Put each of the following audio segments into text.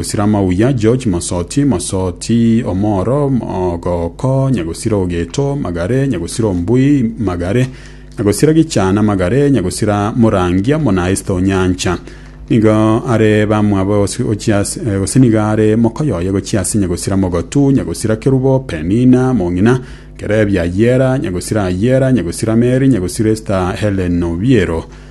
Gosira mauya, George Masoti, Masoti omoro, Mogoko, Nyagosira Ogeto, Magare, Nyagosira Ombui, Magare, Nyagosira Gichana, Magare, Nyagosira Morangia, Monaista Onyancha. Nigo are bamwabo gose- gochia ase- eh, gose nigo are mokoyoye gochia ase Nyagosira Mogotu, Nyagosira Kerubo, Penina, Mong'ina, Kerebi Ayera, Nyagosira Ayera, Nyagosira Meri, Nyagosira Esta Helen Obiero.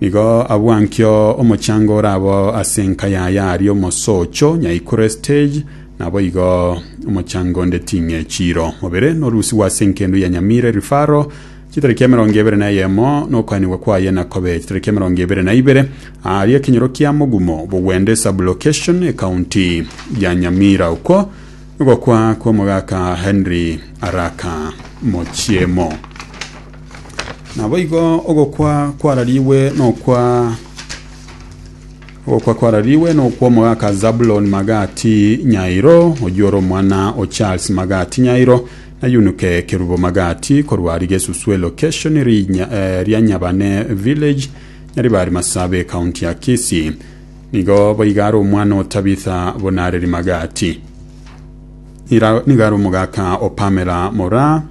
Nigo abwo ankio omochango ore abo ase enka yaye aria omosoocho, nyaikure stage, naboigo omochango onde ting'e chiro. Mobere norusigwe ase enkendu ya Nyamire Rifaro chitariki emerongo ebere na eyemo, nokoanigwa kwaye nakobe chitariki emerongo ebere na ibere aaria ekenyoro kia Mogumo, Bogwende Sub-location, ekaunti ya Nyamira. Okwo nigokwa kw'omogaka Henry Araka Mochiemo. Naboigo ogokwa kwararigwe nokwa ogokwa kwararigwe nokwa omogaka Zabuloni Magati Nyairo, oyio ore omwana o Charles Magati Nyairo, na Yunuke Kerubo Magati, korwa aria Gesuswe location rinya, eh, ria Nyabane village, Nyaribari Masabe, county ya Kisii. Nigo boiga are omwana o Tabitha Bonareri Magati. Ira- Nigo are omogaka o Pamela Moraa,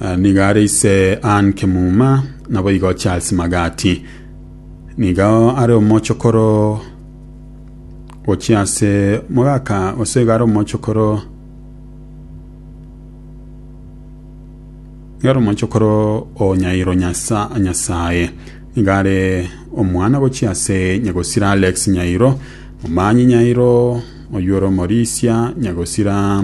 Eh, niga are ise Ann Kimuma naboigo Charles Magati niga are omochokoro gochia ase mogaka gose iga are omochokoro iga are omochokoro o Nyairo Nyasa Nyasaye niga are omwana gochia ase Nyagosira Alex Nyairo omanyi Nyairo oyuoro Morisia Nyagosira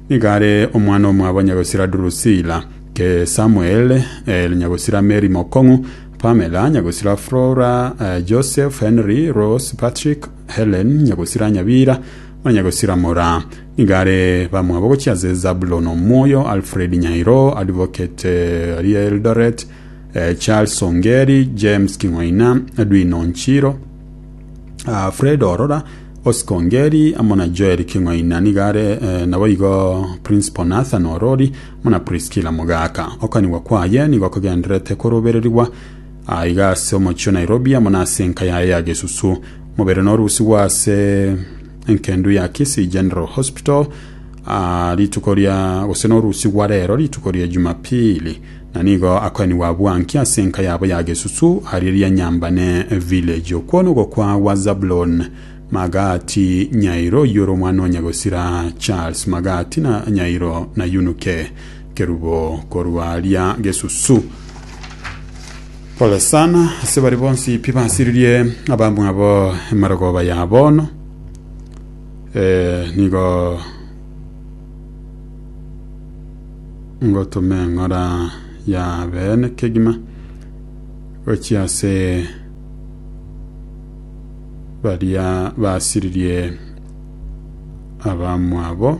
Nigo are omwana omwabo nyagosira Drusila, Samuel, eh, nyagosira Mary Mokong'u, Pamela, nyagosira Flora, eh, Joseph, Henry, Rose, Patrick, Helen, nyagosira Nyabira, na nyagosira Mora. Nigo are bamwabo gochia ase Zabulon Omoyo, Alfred Nyairo, Advocate eh, ari Eldoret, eh, Charles Ongeri, James King'oina, Edwin Onchiro, Ah, Fred Orora Oscongeri amo na Joel King'oina nigo are naboigo Principal Nathan Orori amo na Priscilla Mugaka. Okanigwa kwaye nigo kogendererete korobererigwa aiga ase omochie o Nairobi amo na ase enka yaye ya Gesusu. Omobere norusigwe ase enkendu ya Kisii General Hospital rituko ria gose norusigwa rero rituko ria Jumapili. Na nigo akoenigwa bwankia ase enka yabo ya gesusu, ariria Nyambane Village. Okwo nogokwa gwa Zabulon Magati Nyairo oyio ore omwana o Nyagosira Charles Magati na Nyairo na Yunuke Kerubo korwa aria gesusu. Pole sana ase bari bonsi pi basiririe abamwabo emarogoba ya bono. Eh, nigo ngotoma eng'ora ya beene kegima gochia ase baria basiririe abamwabo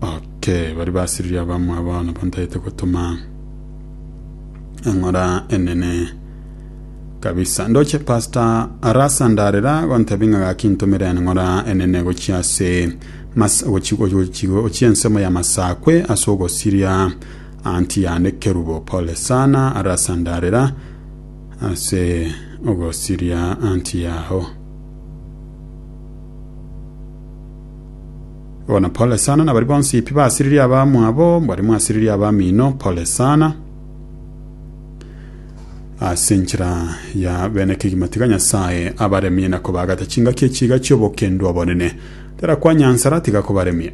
oke bari basiririe abamwabo nabo ntagete gotoma eng'ora enene Kabisa ndoche pastor arasa ndarera gontebi ng'a gaki ntumire eng'ora enene gochia ase mas gochi gochi gochia ensemo ya masakwe ase ogosiria anti yane kerubo pole sana arasa ndarera ase ogosiria anti yaho bona pole sana nabari bonsi pi basiririe abamwabo bari mwasiririe abamino pole sana ase enchera ya bene kegima tiga Nyasae abaremie na kobaagata chingaki echiga chi'obokendwa obonene. Tera kwa nyansara tiga kobaremie.